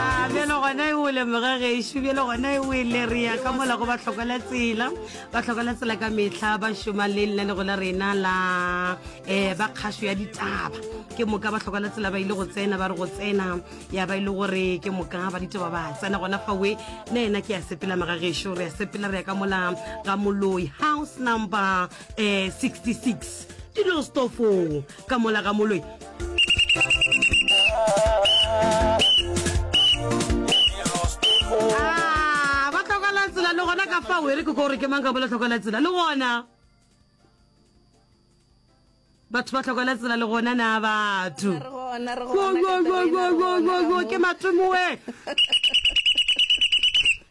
A bjalo gona e o lemoge gešo bjalo gona e o e le re ya ka mola go bahlokola tsela bahlokola tsela ka metlha ba šoma le lenanego la rena la um ba kgašo ya ditaba ke moka bahlokola tsela ba ile go tsena ba re go tsena ya ba e le gore ke moka ba ditaba ba tsena gona fawe le ena ke ya sepela maga gešo re ya sepela re ya ka mola ga moloi house number um 66 dilo stofong ka mola ga moloi ah, ba tlhokala tsela le gona ka fao e re ke ko gore ke mang ka bola tlhokala tsela le gona batho ba tlhokala tsela le gona na batho ke matomoe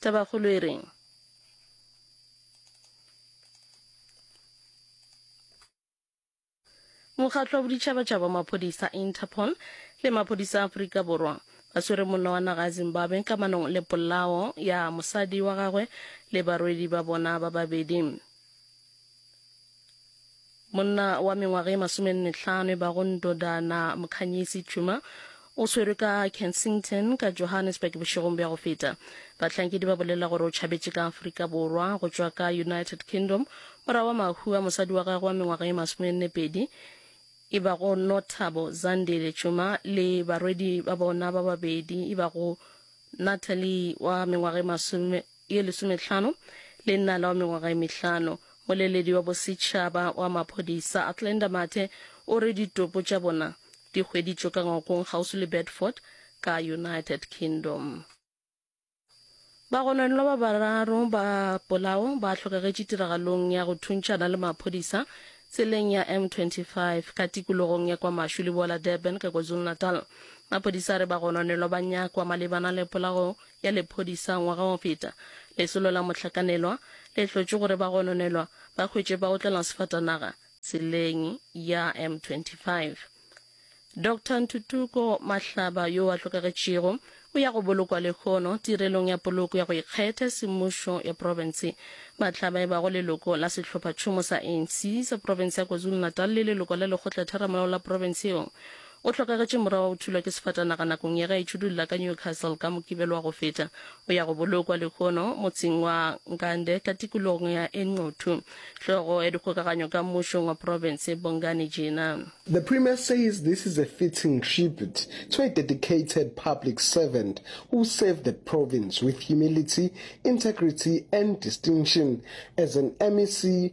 Tabakgolo e reng? Mokgatlo wa Boditšhabatšhaba wa Maphodisa, Interpol, le maphodisa a Afrika Borwa ba swere monna wa naga ya Zimbabwe ka manong le polao ya mosadi wa gagwe le barwedi ba bona ba babedi. Monna wa mengwaga e masomenne-tlhano e bago Ndodana Mkhanyisi Tshuma o swerwe ka Kensington ka Johannesburg bošegong bja go feta. Bahlankedi ba bolela gore o tšhabetše ka Afrika Borwa go tšwa ka United Kingdom morago ga mahu a mosadi wa gagwe wa mengwaga e masomenne-pedi e bago Nothabo Zandile Tshuma le barwedi ba bona ba babedi e bago Natalie wa mengwaga e masome ye lesometlhano le nnala wa mengwaga e mehlano. Moleledi wa bosetšhaba wa maphodisa Athlenda Mathe o re ditopo tša bona di hweditšwe ka ngwakong kgauswi le Bedford ka United Kingdom. Bagononelwa ba bararo ba polao ba hlokagetše tiragalong ya go thuntšhana le maphodisa tseleng ya M25 ka tikologong ya kwa Mashu leboa la Durban ka KwaZulu-Natal. Maphodisa a re bagononelwa ba nyakwa malebana le polao ya lephodisa ngwaga o feta, lesolo la mohlakanelwa le hlotše gore ba gononelwa ba hwetše ba otlela sefatanaga tseleng ya M25. Doctor Ntutuko Mahlaba yo a hlokagetšego o ya go bolokwa lehono tirelong ya poloko ya go ikgethe semmušo ya profense. Mahlaba e bago leloko la sehlophatšhomo sa ANC sa profense ya KwaZulu-Natal le leloko la Lekgotla-Theramolao la profense yeo, O hlokagetše mora wa go thulwa ke sefatanaga nakong ya ge a itšhudulla ka Newcastle ka Mokibelo wa go feta o ya go bolokwa lehono motseng wa Nkande ka tikologong ya Enquthu. Hlogo ya dikgokaganyo ka mmušong wa profense Bongani Jina. The Premier says this is a fitting tribute to a dedicated public servant who served the province with humility, integrity and distinction as an MEC,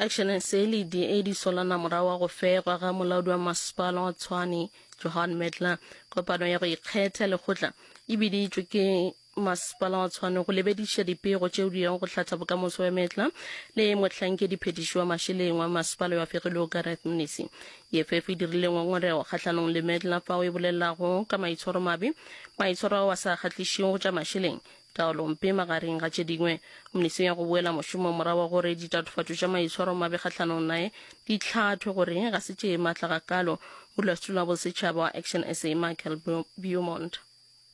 action se le di e di solana morago wa go fegwa ga molaodi wa masepala wa tshwane johan medler kopano ya go ikgetha lekgotla e biditšwe ke masepala wa tshwane go lebediša dipego tšeo di yago go hlatha bokamoso wa metla le mohlankedi phetiši wa mašeleng wa masepala wa fegilego gareth mnisi eff e dirile ngongorego kgahlanong le metla fao e bolelago ka maitshwaro mabe maitshwaro ao a sa kgahlišego tša mašeleng Taolompe, magareng ga tše dingwe, Komnisi ya go Boela Mošomong morago gore ditatofatšo tša maitshwaro mabe kgahlanong naye di hlathwe gore ga se tše matla gakaalo, Modulasetulo wa Bosetšhaba wa Action sa, Michael Beaumont.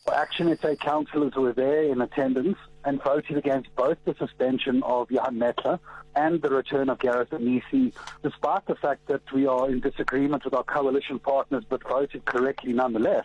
For Action sa councillors were there in attendance and voted against both the suspension of Johan Metler and the return of Gareth Anisi, despite the fact that we are in disagreement with our coalition partners but voted correctly nonetheless.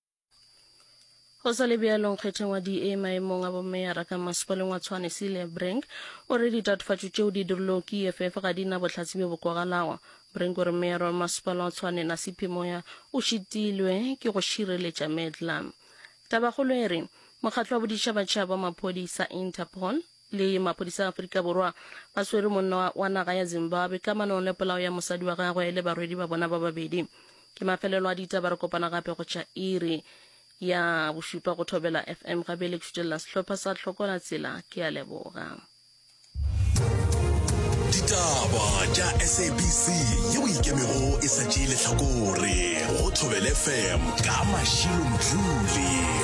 go sa le bjalong kgetheng wa da maemong a bomeyara ka masepaleng wa tshwane celia brink o re ditatofatšo tšeo di dirilwego ke eff ga di na bohlatse bjo bo kwagalago brink o re meyara wa masepala wa tshwane nasipi moya o šitilwe ke go šireletša medlam tabakgolo e re mokgatlo wa boditšhabatšhaba wa maphodisa interpol le maphodisa a Afrika Borwa a swere monna wa naga ya Zimbabwe ka manong le polao ya mosadi wa gagwe le barwedi ba bona ba babedi. Ke mafelelo a ditaba re kopana gape go tšha iri ya bošupa go Thobela FM ga bele tšhutelela sehlopha sa Tlhokola Tsela ke a leboga. Ditaba tša SABC ye o ikemego e sa tšee lehlakore go Thobela FM ka Mashilo Mdluli.